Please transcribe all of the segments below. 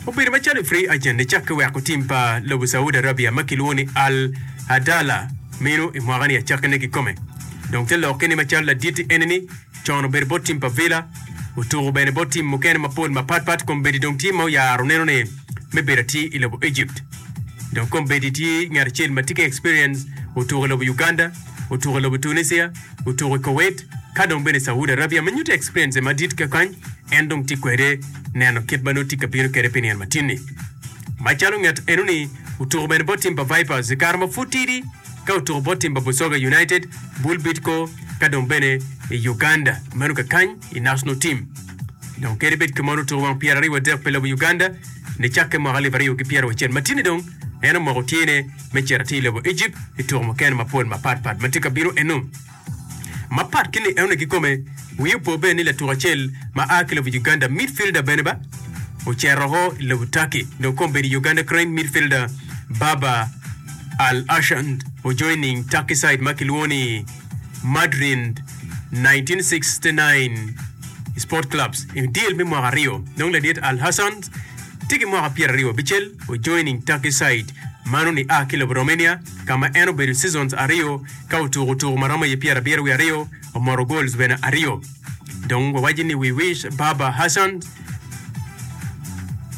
Obedo macalo i free agent icak ki weko tim pa lobo Saudi Arabia ma kilwongo ni Al Adala mino i mwaka ni acakke ne kikome. Dong te lokke ni macalo laditi ene ni con obedo bot tim pa Villa, otuku bene bot tim mukene mapol mapat pat kombeddi dong tye ma oyaro neno ne me bedo atir i lobo Egypt. Dong kombeddi tye ngat acel ma tye ki experience otuku i lobo Uganda, otuku i lobo Tunisia, otuko i Kuwait ka dong bene i Saudi Arabia me nyuto experience madit kekany en dong tye kwede neno kit ma nongo tye ka bino kwede pi nino matin ni. Macalo nget eno ni otuko bene bot tim pa Vipers i kare ma pud tidi ka otuko bot tim pa Busoga United, Bull Bidco ka dong bene i Uganda meno kekany i national team. Dong kadi bed kemon otuko wang pyeraryo wadek pi lobo Uganda nicakke mwaka alip aryo ki pyeraucel matin ni dong en omoko tyene me cito atir i lobo Ejipt i tuko mukene mapol mapatpat ma tye ka bino eno. Mapat ki Leone kikome, wiye opo bene ni latuko acel ma a ki lobo Uganda, midfielder bene ba ocero woko i lobo Turkey dong kong bedo i Uganda Cranes midfielder Baba Alhasand ojoin ning Turkey side ma kilwongo ni Madrid 1969 Sport Clubs i deal me mwaka aryo dong ladit Alhasand Tye ki mwaka pyeraryo abicel, ojoining Turkey side mano ni a ki lobo Romania ka ma en obedo seasons aryo ka otuko tuku ma romo i pyerabiro wiye aryo, omoto goals bene aryo. Dong wawaci ni we wish Baba Hassan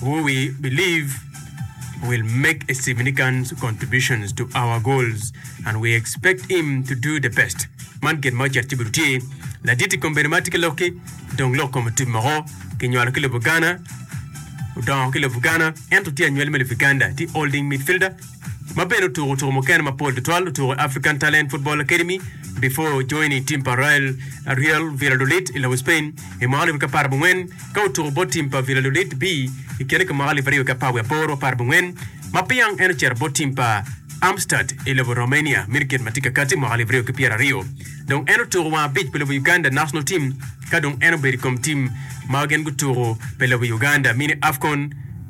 who we believe will make a significant contributions to our goals and we expect him to do the best. Man gin ma ocito ci bidu tye. Ladit i kom bedo ma tye ki lok ki. Dong lok kome tip moko kinywalo ki lobo Ghana, odongo ki lobo Ghana ento tye anywali me lobo Uganda, tye holding midfielder ma bene otuko tuko mukene mapol tutwal, otuko i African Talent Football Academy before joining team pa Real Real Valladolid i lobo Spain i mwaka alip aryo ki apar abongwen ka otuko bot team pa Valladolid B i kine ki mwaka alip aryo ki apar wiye aboro apar abongwen ma piang en ocito bot team pa Armstad i lobo Romania midget ma tye kakati mwaka alip aryo ki pyeraryo. Dong en otuko wang abic pi lobo Uganda National Team ka dong en obedo i kom team ma gin gutuko pi lobo Uganda Mini Afcon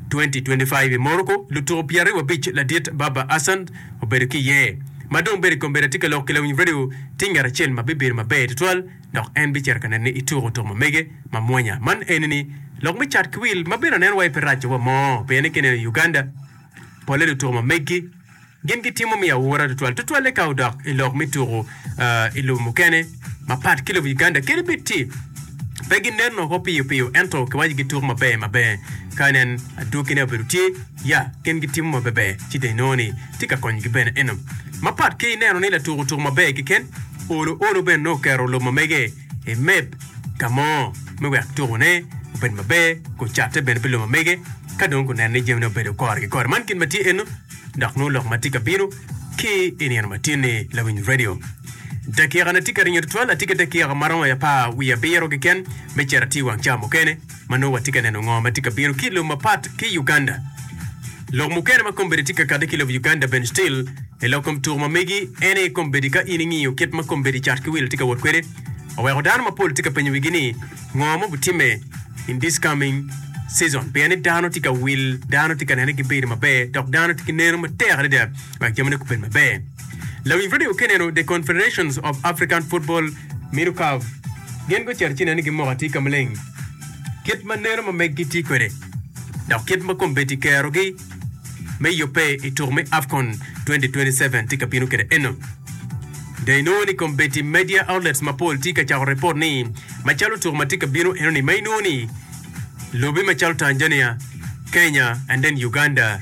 2025 i Morocco. Lutuko pyeraryo wabic ladit Baba Assan obedo ki iye. Ma dong bedo i kom bedo atye ka lok ki lawiny radio tye ngat acel ma bibedo maber tutwal dok en bicito ka nene ituko tuko ma mege ma mwonya man eni ni lok me cat ki wil ma bino neno wa i pi raco wa mo pien ki neno i Uganda pole lutuko ma megi Gin gitimo miyo awura tutwal, tutwalle ka odok i lok me tuku i lobo mukene mapat ki lobo Uganda kadi bed ci pe ginen woko piyo piyo ento kiwaco gituku maber maber ka nen adwogine obedo tye ya gin gitimo maberber ci dong inongo ni tye ka konyogi bene eno mapat ki neno ni latuku otuku maber keken olo olo bene nongo oketo lub ma mege emeb ka mo me wek tukone obed maber, gucatte bene pi lumamege, ka dong guneno ni jamine obedo kore ki kore. Man gin ma tye eno, dok nongo lok ma tye ka bino ki i nino matin-ni. Lawiny Radio. Dakikana tye ka ringo tutwal, atye ki dakika ma romo apar wiye abiro keken me cito atir wang ca mukene. Ma nongo watye ka neno ngo ma tye ka bino ki lum mapat ki Uganda. Lok mukene ma kombeddi tye ka kade ki lob Uganda bene still i lok kom tuku ma megi en aye kombeddi ka in ingiyo kit ma kombeddi cat ki wil tye ka wot kwede oweko dano mapol tye ka penyo wigi ni ngo ma obitimme in this coming season pien ni dano tye ka wil dano tye ka nene gibedo maber dok dano tye ki neno matek adada wek jami ne gubed maber. Lawiny radio ki neno The Confederations of African Football, Minu Caf, gin gucito ci neno ni gimoko atika maleng kit ma neno ma meggi tye kwede dok kit ma kombeddi kerogi me yubbe i tuku me Afcon 2027 tye ka bino kwede eno. Dong inongo ni kombeddi media outlets mapol tye ka cako ripot ni macalo tuku ma tye ka bino enoni ma inongo ni lobe macalo Tanzania, Kenya and then Uganda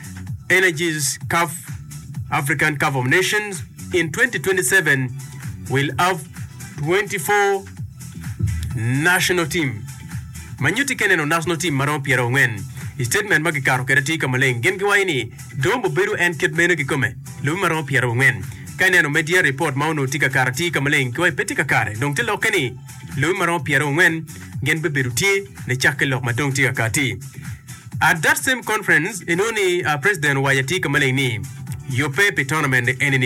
Energies Caf African Cup of Nations in 2027 will have 24 national team ma nyutti kene no national team ma romo pyera ongwen i statement ma gikato kede atir ka maleng gin giwaco ni Dombo bedo en kit meno kikome lobi ma romo pyera ongwen ka ineno media report ma onongo tye ka kato atir ka maleng kiwaco pe tye ka kare dong tye lokke ni Lobe ma romo pyerangwen gin bibedo tye nicakke lok ma dong tye ka kati. At that same conference, inongo ni President owaco atir ka maleng ni, Yubbe pi tournament eni ni,